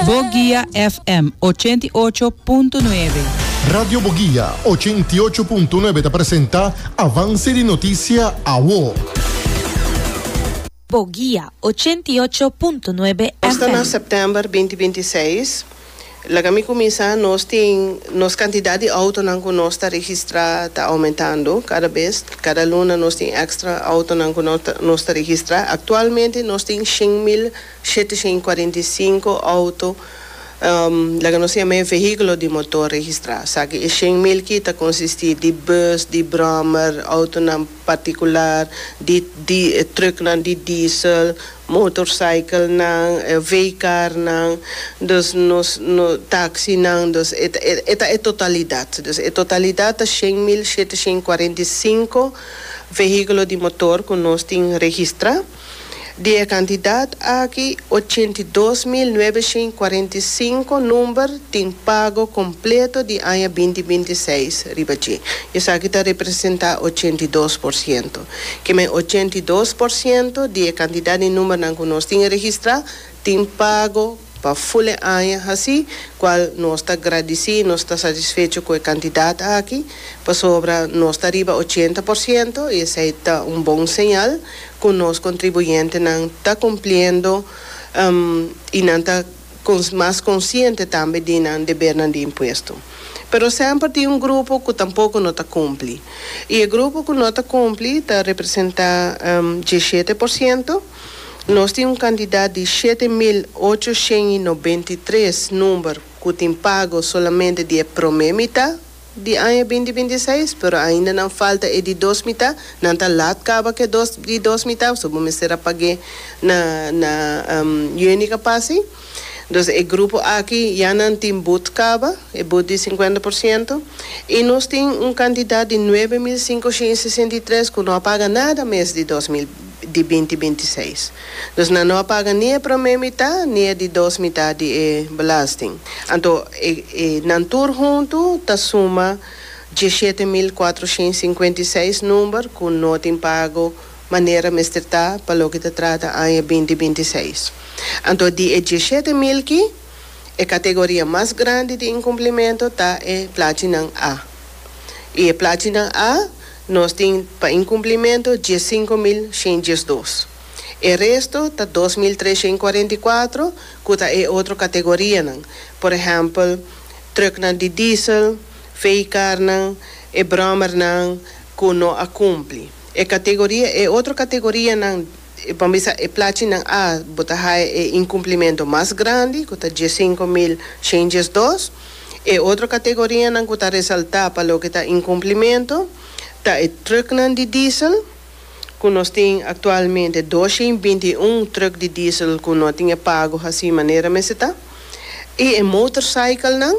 Boguia FM ochenta i ocho punto nuebe. Radio Boguia ochenta i ocho punto nuebe ta presenta Avance di Noticia Awo. Boguia ochenta i ocho punto nuebe Esta na FM. September binti binti seis laga mi cuminsa nos tin nos cantidad di autonan cu nos ta registra ta aumentando cada bes cada luna nos tin extra autonan cu nos ta registra actualmente nos tin shin mil 745 auto laga nos ta yama e vehiculo di motor registra, saki e shen mil ki ta consisti di bus, di brommer, autonan particular, di di trucknan di diesel, motorcyclenan, veecarnan, dus nos no taxinan, dus e ta e ta e totalidad, dus e totalidad ta shen mil shete shen cuarenta i sinku vehiculo di motor cu nos tin registra. Di e kantidat aki, ochenta i dos mil nuebe shin kuarenta i sinku number tin pago kompleto di aña binti binti i seis riba dje. Esaki ta representá ochenta i dos por siento. Kiemen ochenta i dos por siento di e kantidat di numbernan ku nos tin registrá tin pago. Pa ful e aña haci cual nos ta gradici, nos ta satisfecho cu e cantidad aki, pasobra nos ta riba ochenta por ciento y esey ta un bon señal cu nos contribuyentenan ta cumpliendo y nan ta mas consciente tambe di nan debernan di impuesto. Pero semper tin un grupo cu tampoco no ta cumpli y e grupo cu no ta cumpli ta representa dieschete por ciento. Nos tin un kantidat di shete mil ocho shen i nobenta i tres number ku tin pago solamente di e promé mitá di aña binti binti i seis, pero ainda nan falta e di dos mitá. Nan ta lat kaba ku e dos di dos mitá, so bo mester a pag'é na na juni ku a pasa ei. Entonces e grupo aki ya nan tin but caba, e but di cincuenta por ciento, y nos tin un cantidad di nuebe mil cincoshint sesenta y tres cu no a paga nada mes di dos mil di binti binti i seis. Entonces nan no a paga ni e prome mita ni e di dos mita di e belasting. Anto e e nan tur hunto ta suma diesshete mil cuatroshint cincuenta y seis number cu no tin pago manera mester ta pa loke ta trata aña binti binti seis. Anto di e diesshete mil ki, e kategoria mas grandi di inkumplimentu ta e plachinan A. I e plachinan A nos tin pa inkumplimentu diessinko mil shen diesdos. E resto ta dos mil tres shen kuarenta i kuatro ku ta e otro kategorianan, por ehèmpel, trùknan di diesel, vehikarnan, e bròmernan ku no a kumpli. E categoria, e otro categorianan, pa mi sa e plachinan A, bo ta haya e incumplimento mas grandi, cu ta dies sinku mil shen dies dos. E otro categorianan cu ta resalta pa loke ta incumplimento, ta e trucknan di diesel, cu nos tin actualmente dos shen binti i un truck di diesel cu no a tin e pago haci manera mester ta, i e motorcyclenan.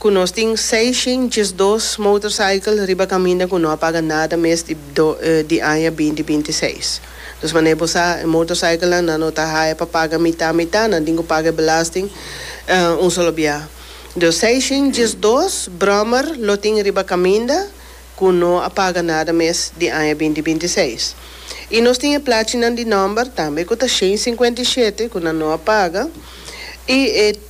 ku nos tin seishen diesdos motorcycle riba kaminda ku no a paga nada mes di di aña binti binti seis. Dus manera bo sa e motorcyclenan nan no ta haya pa paga mitá mitá, nan tin ku paga e belasting un solo biaha. Dus seishen diesdos brommer lo tin riba kaminda ku no a paga nada mes di aña binti binti seis. I nos tin e plachinan di nòmber tambe ku ta shen sinkuenta i shete ku nan no a paga i e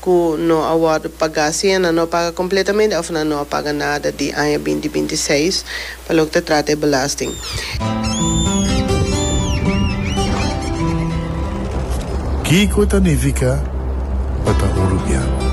ku no a wòrdu pagá si nan no a paga kompletamente òf nan no a paga nada di aña binti binti seis pa loke ta trata e belasting. Kiko ta nifiká pa ta urubiano?